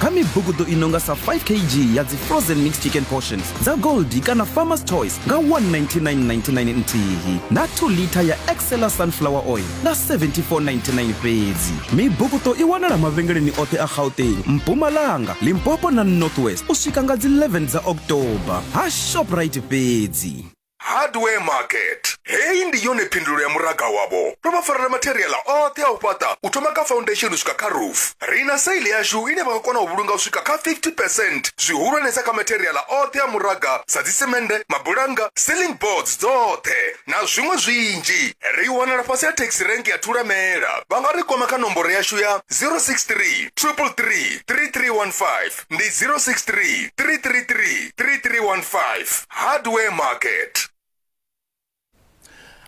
kha mibugudo i nonga sa 5 kg ya dzi frozen mixed chicken portions dza goldi kana farmers choice nga 19999 nthihi na 2 liter ya excela sunflower oil nga 7499 fhedzi mibugudo i wanala mavhengeleni oṱhe a gauteng mpumalanga limpopo na northwest u swika nga dzi 11 dza october ha shoprite fhedzi Hardware Market. Heyi ndi yone phindulo ya muraga wavho. Ro vha farela matheriaḽa oṱhe a u fhaṱa u thoma kha foundation u swika kha roof. Ri na saili yashu ine vha nga kona u vhulunga u swika kha 50 percent zwihulwanesa kha matheriaḽa oṱhe a muraga sa dzisemende, mabulannga, ceiling boards dzoṱhe na zwiṅwe zwinzhi. Ri wanala fhasi ha taxi rank ya Thulamela. Vha nga ri kwama kha nomboro yashu ya 063 333 3315. ndi 063 333 3315 hardware market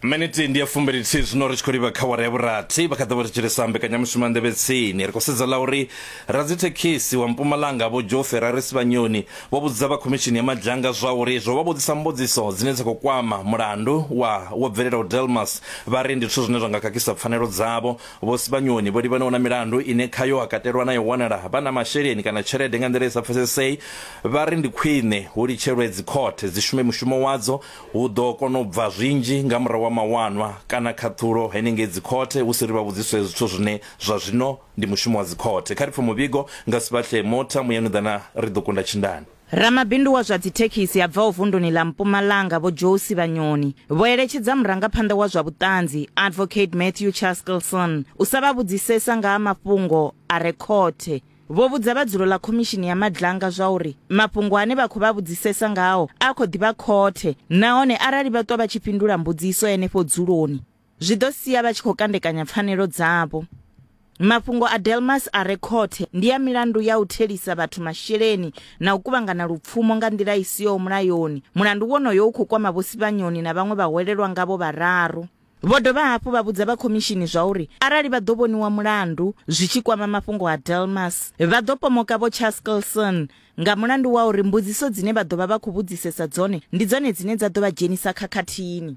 miniti ndi ya fumbilithihi zwino ri tshi khou livha kha wara ya vhurathi vha kha ḓa vha ri tshilisa mbekanyamushumo ya nḓevhe tsini ri khou sedza ḽa uri radzithekhisi wa mpumalanga vho joe ferraris vhanyoni vho vhudza vha khomishini ya madzhanga zwa uri zwo vha vhudzisa mbudziso dzine dza khou kwama mulandu wa wo bvelelaho delmas vha ri ndi zwithu zwine zwa nga khakhisa pfanelo dzavho Vho Sibanyoni vho livhanaho na milandu ine khayo ha katelwa na ya u wanala vha na masheleni kana tshelede nga nḓila i sa pfesesei, vha ri ndi khwine hu litshelwe dzikhothe dzi shume mushumo wadzo, hu ḓo kona u bva zwinzhi nga murahu ha mawanwa kana khaṱhulo henengei dzikhothe hu si ri vha vhudziswe zwithu zwine zwa zwino ndi mushumo wa dzikhothe. Kha ri pfe muvhigo nga Sibahlee Motha, Muyanuḓana ri ḓo kunda tshindani. Ramabindu wa zwa dzithekhisi a bvaho vunduni ḽa Mpumalanga Vho Joe Sivhanyoni vho eletshedza murangaphanḓa wa zwa vhuṱanzi Advocate Matthew Chaskelson u sa vha vhudzisesa nga ha mafhungo a re khothe. Vho vhudza vha dzulo ḽa khomishini ya Madlanga zwauri mafhungo ane vha khou vha vhudzisesa ngao a khou ḓi vha khothe nahone arali vha ṱwa vha tshi fhindula mbudziso henefho dzuloni, zwi ḓo sia vha tshi khou kandekanya pfanelo dzavho. Mafhungo a Delmas a re khothe ndi a milandu ya u thelisa vhathu masheleni na u kuvhangana lupfumo nga nḓila i siho mulayoni. Mulandu wonoyo u khou kwama Vho Sibanyoni na vhaṅwe vhahwelelwa ngavho vhararu. Vho dovha hafhu vha vhudza vha khomishini zwauri arali vha ḓo vhoniwa mulandu zwi tshi kwama mafhungo a Delmas, vha ḓo pomoka Vho Chaskelson nga mulandu wa uri mbudziso dzine vha ḓo vha vha khou vhudzisesa dzone ndi dzone dzine dza ḓo vha dzhenisa khakhathini.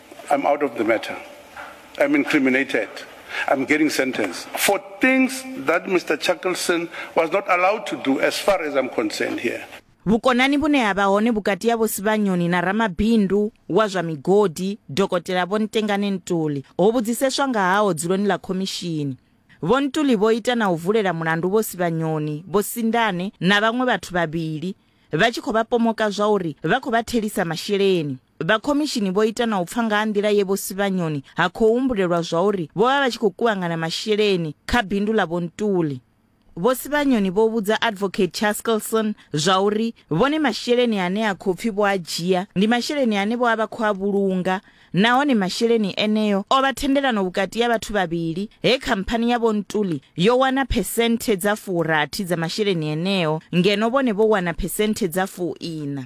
I'm out of the matter. I'm incriminated. I'm getting sentenced for things that Mr. Chuckleson was not allowed to do as far as I'm concerned here. Vhukonani vhune ha vha hone vhukati ha Vho Sibanyoni na ramabindu wa zwa migodi Dokotela Vho Ntengane Ntuli ho vhudziseswa nga haho dzuloni ḽa khomishini. Vho Ntuli vho ita na u vulela mulandu Vho Sibanyoni, Vho Sindane na vhaṅwe vhathu vhavhili vha tshi khou vha pomoka zwa uri vha khou vha thelisa masheleni. Vha khomishini vho ita na u pfa nga ha nḓila ye Vho Sibanyoni ha khou humbulelwa zwauri vho vha vha tshi khou kuvhangana masheleni kha bindu ḽa Vho Ntuli. Vho Sibanyoni vho vhudza Advocate Chaskelson zwauri vhone masheleni ane a khou pfi vho a dzhia ndi masheleni ane vho a vha khou a vhulunga nahone masheleni eneo o vha thendelano vhukati ya vhathu vhavhili he khamphani ya Vho Ntuli yo wana phesenthe dza furathi dza masheleni eneo ngeno vhone vho wana phesenthe dza fuiṋa.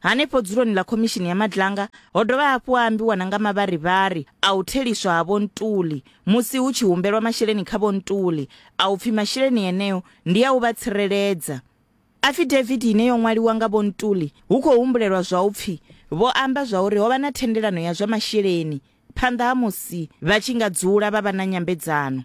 Hanefho dzuloni ḽa Khomishini ya Madlanga ho dovha hafhu ha ambiwa na nga mavharivhari a u theliswa ha Vho Ntuli musi hu tshi humbelwa masheleni kha Vho Ntuli a u pfi masheleni eneo ndi a u vha tsireledza. Afidavithi ine yo ṅwaliwa nga Vho Ntuli hu khou humbulelwa zwa u pfi vho amba zwa uri ho vha na thendelano ya zwa masheleni phanḓa ha musi vha tshi nga dzula vha vha na nyambedzano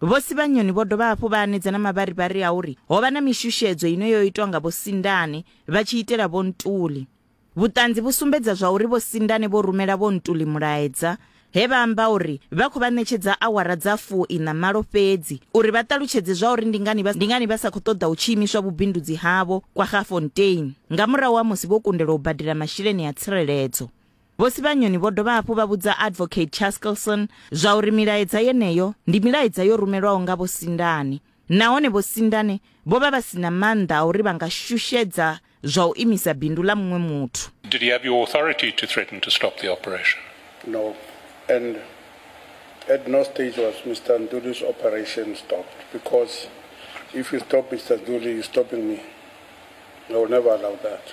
Vho Sibanyoni vho dovha hafhu vha anedza na mavharivhari a uri ho vha na mishushedzo ine yo itwa nga Vho Sindane vha tshi itela Vho Ntuli. Vhuṱanzi vhu sumbedza zwa uri Vho Sindane vho rumela Vho Ntuli mulaedza he vha amba uri vha khou vha ṋetshedza awara dza fu-iṋa malo fhedzi uri vha ṱalutshedze zwa uri ndi ngani vha ndi ngani vha sa khou ṱoḓa hu tshi imiswa vhubindudzi havho Kwaggafontein nga murahu ha musi vho kundelwa u badela masheleni a tsireledzo. Vho Sibanyoni vho dovha hafhu vha vhudza Advocate Chaskelson zwa uri milaedza yeneyo ndi milaedza yo rumelwaho nga Vho Sindane nahone Vho Sindane vho vha vha si na maanḓa a uri vha nga shushedza zwa u imisa bindu ḽa muṅwe muthu. Did he have your authority to threaten to stop the operation? No, and at no stage was Mister Nduli's operation stopped because if you stop Mister Nduli, you're stopping me. I will never allow that.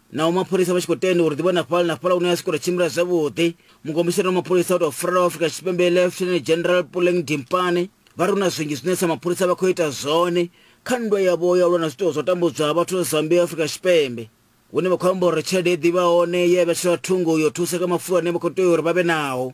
naho mapholisa vha tshi khou tenda uri ḓivha na fhala na fhala hune a swika uri tshimbila zwavhuḓi mukomisini wa mapholisa wa tou furala wa afrika tshipembe lieutenant general puleng dimpane vha ri hu na zwinzhi zwine sa mapholisa vha khou ita zwone kha nndwa yavho ya lwa na zwiṱuwo zwa tambudzwa ha vhathu zambia afrika tshipembe hune vha khou amba uri tshelede i ḓivha hone ye ya vhetshela thungo yo thusa kha mafulo ane vha khou tea uri vha vhe naho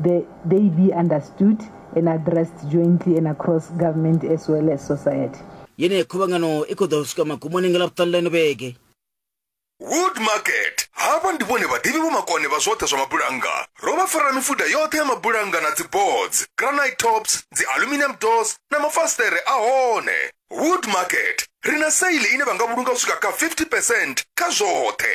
The they be understood and addressed jointly and across government as well as society. Yeneyi khuvhangano i khou ḓo swika magumoni nga Ḽavhuṱanu ḽa ino vhege. Wood Market. Havha ndi vhone vhaḓivhi vho makone vha zwoṱhe zwa mabulannga. Ro vha farela mifuda yoṱhe ya mabulannga na dzi boards, granite tops, dzi aluminium doors na mafasiṱere a hone. Wood Market. Ri na sale ine vha nga vhulunga u swika kha 50 percent kha zwoṱhe.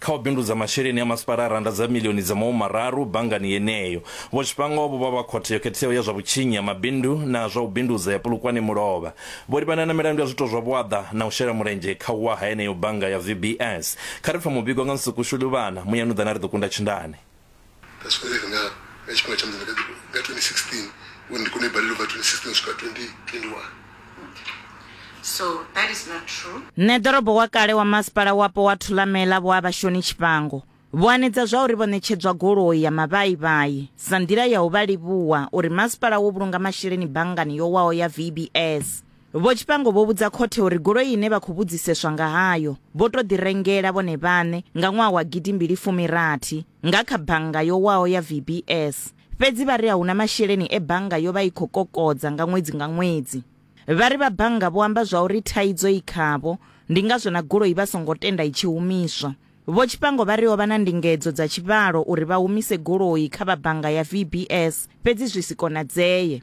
Kha u bindudza masheleni a masipala a rannda dza miḽioni dza mahumi mararu banngani yeneyo, Vho Tshifhango vho vha vha Khothe yo Khetheaho ya zwa Vhutshinyi ha Mabindu na zwa u Bindudza ya Polokwane Mulovha. Vho livhana na milandu ya zwiito zwa vhuaḓa na u shela mulenzhe kha u wa ha yeneyo bannga ya VBS. Kha ri pfe muvhigo nga Nsuku Shuli-Luvhana, Muyanuḓana ri ḓo kunda Tshindane. ndaswedera na vechikoro changu nga 2016 uye ndiri kune bhari lova 2016 kusvika 2021 So that is not true. Nṋe ḓorobo wa kale wa masipala wapo wa Thulamela Vho Abashoni Tshifhango vho anedza zwa uri vho ṋetshedzwa goloi ya mavhaivhai sa nḓila ya u vha livhuwa uri masipala wo vhulunga masheleni banngani yo waho ya VBS. Vho Tshifhango vho vhudza khothe uri goloi ine vha khou vhudziseswa nga hayo vho tou ḓi rengela vhone vhaṋe nga ṅwaha wa gidimbili fumi rathi nga kha bannga yo waho ya VBS, fhedzi vha ri a huna masheleni e bannga yo vha i khou kokodza nga ṅwedzi nga ṅwedzi. Vha ri vha bannga vho amba zwa uri thaidzo i khavho, ndi ngazwo na goloi vha songo tenda i tshi humiswa. Vho Tshifhango vha ri ho vha na ndingedzo dza tshivhalo uri vha humise goloi kha vha bannga ya VBS, fhedzi zwi si konadzee.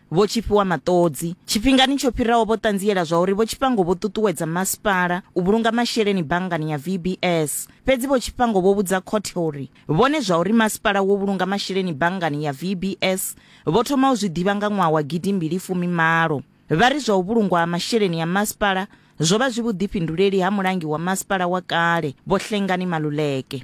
Vho Tshifhiwa Maṱodzi, Tshifhingani tsho fhiraho vho ṱanziela zwa uri Vho Tshifhango vho ṱuṱuwedza masipala u vhulunga masheleni banngani ya VBS. Fhedzi Vho Tshifhango vho vhudza khothe uri vhone zwa uri masipala wo vhulunga masheleni banngani ya VBS vho thoma u zwi ḓivha nga ṅwaha wa gidi mbili fumi malo. Vha ri zwa u vhulungwa ha masheleni ya masipala zwo vha zwi vhuḓifhinduleli ha mulangi wa masipala wa kale Vho Hlengani Maluleke.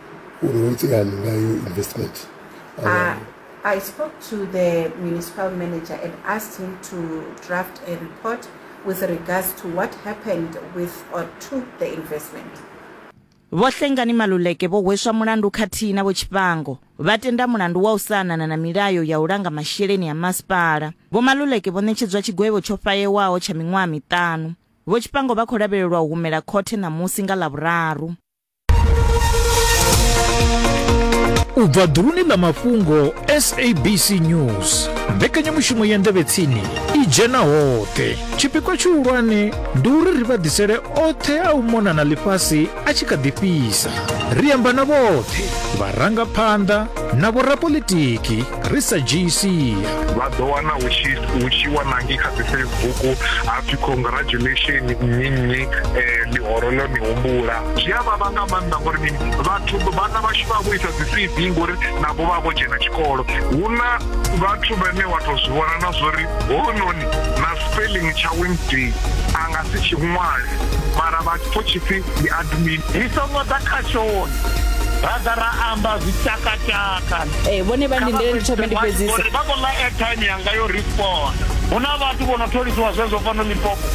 uru nwetị ya na ngaghị investment Uh, I spoke to the municipal manager and asked him to draft a report with regards to what happened with or to the investment. Vho Hlengani Maluleke vho hweswa mulandu khathihi na vho Tshifhango vha tenda mulandu wa u sa anana na milayo ya u langa masheleni a masipala. Vho Maluleke vho ṋetshedzwa tshigwevho tsho fayewaho tsha miṅwaha miṱanu. Vho Tshifhango vha khou lavhelelwa u humela khothe ṋamusi nga Ḽavhuraru. u bva ḓuluni ḽa mafhungo sabc news mbekanyamushumo ya ndevhetsini i dzhena hoṱhe tshipikwa tshihulwane ndi uri ri vha ḓisele oṱhe a u mona na ḽifhasi a tshi kha ḓi fhisa ri amba na vhoṱhe vharangaphanḓa na vhorapolitiki ri sa dzhii sia vha ḓo wana hu tshi hu tshi wanangi kha dzi facebook hapfi congratulation nnyi nnyi um ḽihoro ḽo ni humbula zwi a vhavha nga maanḓa ngori mini vhathu vhana vhashu vha vho isa dzi cv ngori navho vha vho dzhena tshikolo hu na vhathu vhane wa tou zwi vhona na zwori hounoni na spelling tsha wednesday a nga si tshi ṅwale mara vha pfo tshipfi ndi admin ri songo ḓa khashoni ra ḓa ra amba zwitakataka ee vhone vha ndindele ndi thome ndi fhedzise vha khou ḽa airtime yanga yo respond hu na vhathu vho no tholisiwa zwezwo fano lipopo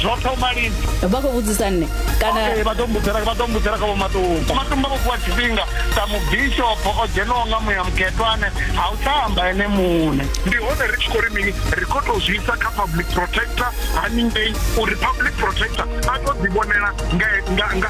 zwo thoma lini vha khou vhudzisa nne kana vha ḓo mbudzela vha ḓo mbudzela kha vho matumba matumba vho fhiwa tshifhinga sa mubishopo o dzhenaho nga muya mukhetwane ha u tsha amba ene muṋe ndi hone ri tshi khou ri mini ri khou tou zwi isa kha public protector haningei uri public protector a to ḓi vhonela nga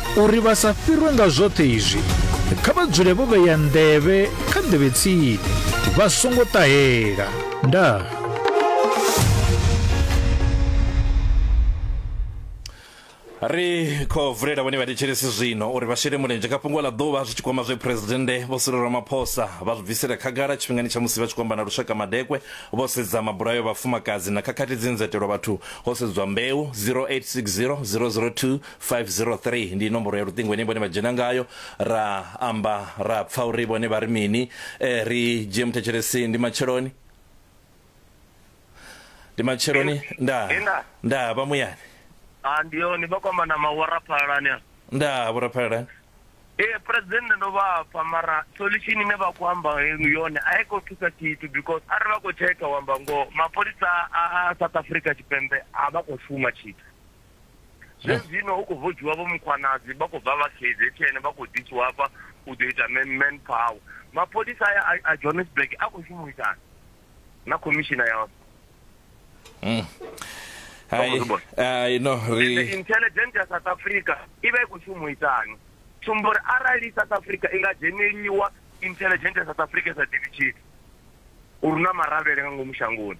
Uri vha sa fhirwe nga zwoṱhe izwi, kha vha dzule vho vhea nḓevhe kha nḓevhe tsini, vha songo ṱahela. Ndaa. ri khou vulela vhone vhathetshelesi zwino uri vha shele mulenzhe kha fhungo ḽa ḓuvha zwi tshi kwama zwe phuresidennde vho Cyril Ramaphosa vha zwi bvisela khagala tshifhingani tsha musi vha tshi kwamba na lushaka madekwe vho sedza mabulayo vhafumakadzi na khakhathi dzi nzetelwa vhathu ho sedzwa mbeu 0860 002 503 ndi nomboro ya luṱingo ine vhone vha dzhena ngayo ra amba ra pfa uri vhone vha ri mini eh, ri dzhie muthetshelesi ndi matsheloni ndi matsheloni nda Inda. nda vha muyani a ndi yone vha kwamba na mawara phalalani a nda vhuraphalelani ee president ndo vha pfa mara solution ine vha khou amba enu yone a i khou thusa tshithu because arali vha khou tsheka wamba ngoho mapholisa a a south africa tshipembe a vha khou shuma tshithu zwezwino hu khou vodziwa vho mukhwanadzi vha khou bva vha kzn vha khou ḓisiwa hafha u ḓo ita man power mapholisa aya a johannesburg a khou shuma u itani na khomishina ya hmm. no ri intelligent ya south africa i vha i khou shuma u itani tsumbo uri arali south africa i nga dzheneliwa intelligent ya south africa sa ḓivhi tshithu uri na maravhele nga ngomu shangoni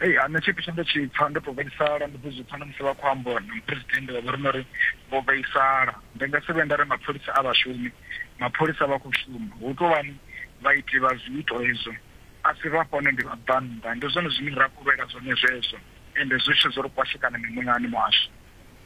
Hei ha nṋe tshipfi tshe nda tshi pfa ndo to vhaisala ndo ḓo zwi pfa na musi vha khou amba uri na muphuresidennde vha vho ri nori vho vhaisala ndi nga si vhe nda ri mapholisa a vhashumi mapholisa vha khou shuma hu tou vhani vhaiti vha zwiito hezwo a si vha fhone ndi vhabvannḓa ndi zwone zwine ra kovhela zwone zwezwo ende zwi tshi zwo ri kwashekana mimoyani muhasho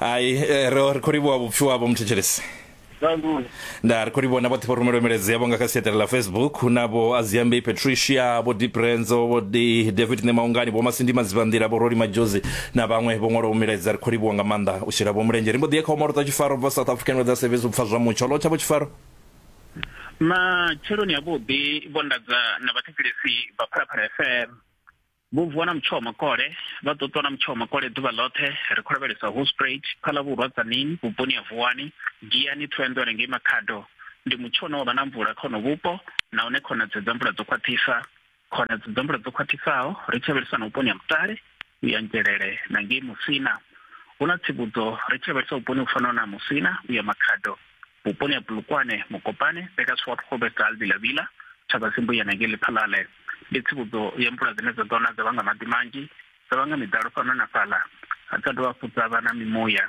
hai eh, ro ri khou livhuwa vhupfi wavho muthetshelesi Nandule. nda ri khou livhuwa na vhoṱhe vho rumelwa milaedza yavho nga kha siaṱari ḽa facebook hu na vho aziambei patricia vho diprenzo vho Di- david nemaungani vho masindi madzivhanḓila vho roli majozi na vhaṅwe vho ṅwalaho milaedza ri khou livhuwa nga maanḓa u shela vho mulenzhe ri mbo ḓi ye kha omaro dza tshifaro bva south african weather service u pfa zwa mutsho lo tshavho tshifaro matsheloni avhuḓi vho ndadza na vhathetshelesi vha phalaphala fm Vho vuwa na mutsho wa makole, vha ḓo ṱwa na mutsho wa makole ḓuvha ḽoṱhe. Ri khou lavhelesa Hoedspruit, Phalabvhurwa, Tzaneen vhuponi ha Vuwani, Giyani, Thohoyandou hanengei Makhado. Ndi mutsho une wa vha na mvula kha honoho vhupo nahone khonadzeo dza mvula dzo khwaṱhisa. Khonadzeo dza mvula dzo khwaṱhisaho ri tshi lavhelesa na vhuponi ha Mutale, Uya Ngelele na ngei Musina. Hu na tsivhudzo ri tshi lavhelesa vhuponi vhu fanaho na ha Musina, Uya Makhado. Vhuponi ha Bulukwane, Mokopane, Bekasfort, Groblersdal, Villa Villa, Thabasi, Mbuyana ngei Lephalale, ndi tsivhudzo ya mvula dzine dza ḓo na dza vhanga maḓi manzhi, dza vhanga miḓalo fhano na fhaḽa, dza dovha hafhu dza vha na mimuya.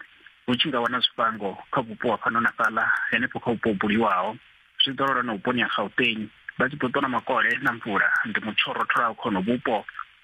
Hu tshi nga wana zwifhango kha vhupo ha fhano na fhaḽa henefho kha vhupo ho buliwaho, zwi ḓo lala na vhuponi ha Gauteng, vha tshi ḓo ṱona makole na mvula. Ndi mutsho wo rotholaho kha honovhu vhupo.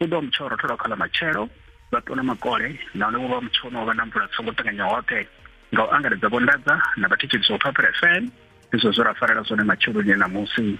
U ḓo vha mutsho wa rothola kha ḽa matshelo, vha ṱuwa na makole, nahone vho vha mutsho une wa vha na mvula dzi songo ṱanganya hoṱhe. Nga u angaredza vho nḓadza na vha thetshelisa u pfa pherefene. Ndi zwezwo zwe ra farela zwone matsheloni e ṋamusi.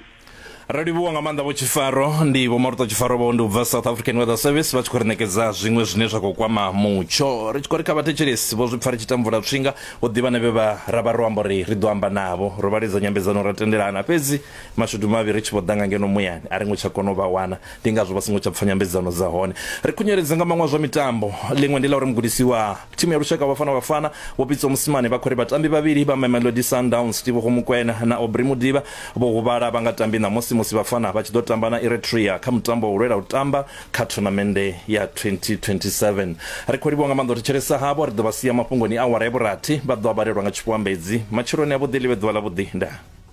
Ro livhuwa nga maanḓa vho Tshifaro. Ndi Vho Maruṱa Tshifaro vho ndi u bva South African Weather Service vha tshi khou ri ṋekedza zwiṅwe zwine zwa khou kwama mutsho. Ri tshi khou ri kha vhathetshelesi vho zwi pfa ri tshi ita mvula tswinga, hu ḓivha na vhe vha ra vha ro amba uri ri ḓo amba navho. Ro vha lidza nyambedzano ra tendelana, fhedzi Mashudu mavhi ri tshi vho ḓa nga ngeno muyani, a ri ngo tsha kona u vha wana. Ndi ngazwo vha songo tsha pfa nyambedzano dza hone. Ri khunyeledze nga maṅwe a zwa mitambo. Ḽiṅwe ndi ḽa uri mugudisi wa thimu ya lushaka wa Bafana Bafana, Vho Pitso Mosimane, vha khou ri vhatambi vhavhili vha Mamelodi Sundowns, Teboho Mokoena na Aubrey Modiba, vho huvhala vha nga tambi ṋamusi musi Bafana vha tshi ḓo tamba na Eritrea kha mutambo wa u lwela u tamba kha thonamennde ya 2027. Ri khou livhuwa nga maanḓa u thetshelesa havho. Ri ḓo vha sia mafhungoni a awara ya vhurathi. Vha ḓo a vhalelwa nga tshiphuambedzi. Matsheloni avhuḓi ḽi vhe ḓuvha ḽavhuḓi. Ndaa.